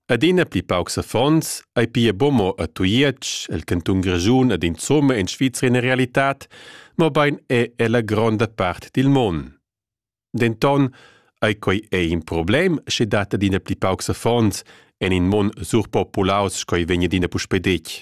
Adina pli paucs affons ei pia buca mo a Tujetsch, el cantun Grischun ed insomma in Svizra ina realitad, mobein è ella gronda part dil mon. Denton ei quei ei in problem, sche dat adina pli paucs affons en in mon surpopulaus sco ei vegn adina puspei detg.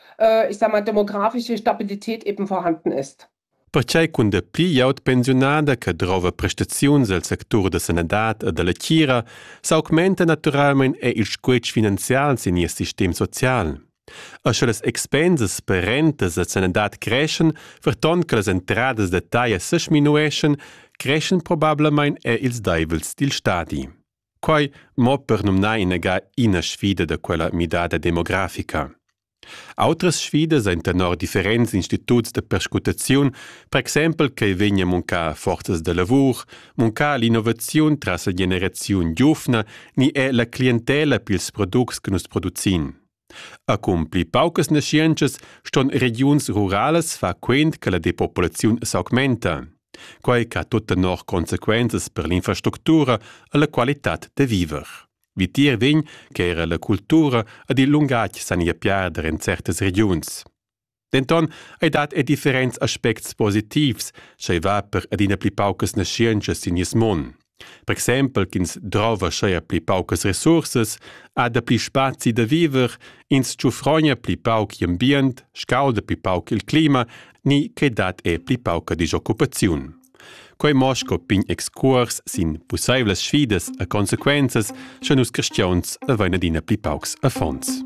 ich sag mal, demografische Stabilität eben vorhanden ist. Perquai cun da pli glieud pensiunada che drova prestaziuns el sectur da sanadad e dalla tgira s'augmenta naturalmein er il squetsch finanzial sin nies sistem social. E sche las expensas per rentas e sanadad creschen, verton che las entradas da taglia sesminueschen, creschen probablamain er ils deivels dil stadi. Quai mo per numnar inagà ina sfida da quella midada demografica. Autras sfidas ein tenor differents instituts da perscrutaziun, per exempel che vegn a muncar forzas da lavur, muncar l'innovaziun tras la generaziun giuvna ni è la clientela pils products che nus producin. Cun pli paucas naschientschas ston regiuns ruralas far quent che la depopulaziun s'augmenta, quai che ha tut tenor consequenzas per l'infrastructura e la qualitad da viver. Vitier vegn che era la cultura ed il lungatg san ir piarder en certas regiuns. Denton ei dat er differents aspects positivs, sch'ei va per adina pli paucas naschientschas sin nies mon. Per exempel ch'ins drova scheia pli paucas resursas, ha da pli spazi da viver, ins tschufrogna pli pauc ambient, scauda pli pauc il clima, ni che dat er pli pauca disoccupaziun. Quei mo sco pign excuors sin pusseivlas sfidas e consequenzas, sche nus cristiauns avein adina pli paucs affons.